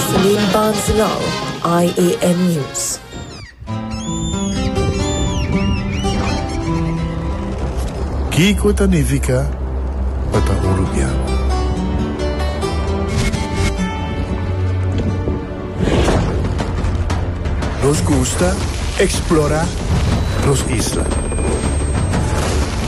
Celine Barcelou, IAN News. Kiko ta nifica pa ta un rubian? Nos gusta explora nos isla.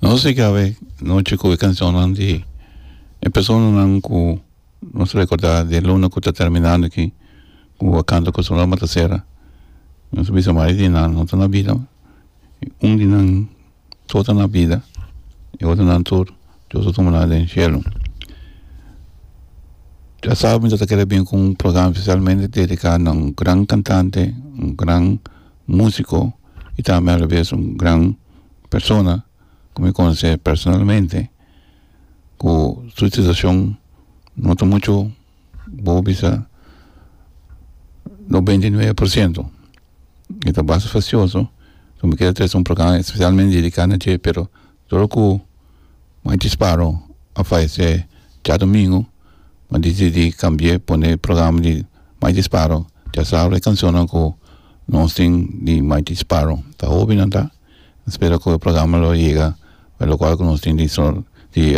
Nos a kaba e nochi ku e kanshonnan di e personanan ku nos rekorda di e luna ku ta terminando aki ku a kanta ku su loma ta sera nos a bisa mari di nan no ta na bida un di nan so ta na bida e otronan tur dios a tuma nan den shelu dia sabado mi ta kere bin ku un program specialmente dedika na un gran kantante un gran musiko i tambe a la bes un gran persona ku mi konosé personalmente ku su situashon no ta muchu bo bisa noventa i nuebe por siento i ta basta fasioso ku mi keda trese un programa spesialmente dediká na dje pero Solo ku mai disparo a fallecé djadomingu m'ha disidí kambi'é pone programa di mai disparo dja sabra e kanshonnan ku nos tin di mai disparo ta hobinan ta a spera ku e programa lo yega pa lokual ku nos tin di sor di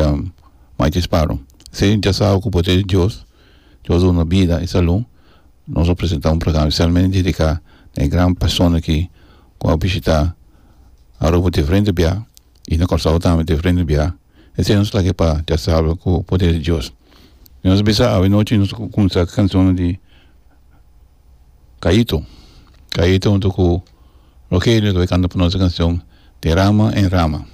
mai disparo esei dja sabra ku poder di Dios Dios duna bida i salú. Nos a presenta un programa specialmente dedica na e gran persona ki cu a bishita Aruba diferente bia y na Curaçao tambe diferente bia. Esey nos lag'e pa dia sabado cu poder di Dios. Cuando nos a bisa awe nochi nos a cuminsa cu cancionnan di Caito. Caito junto cu Rogelio lo a canta pa nos e cancion Derama en rama.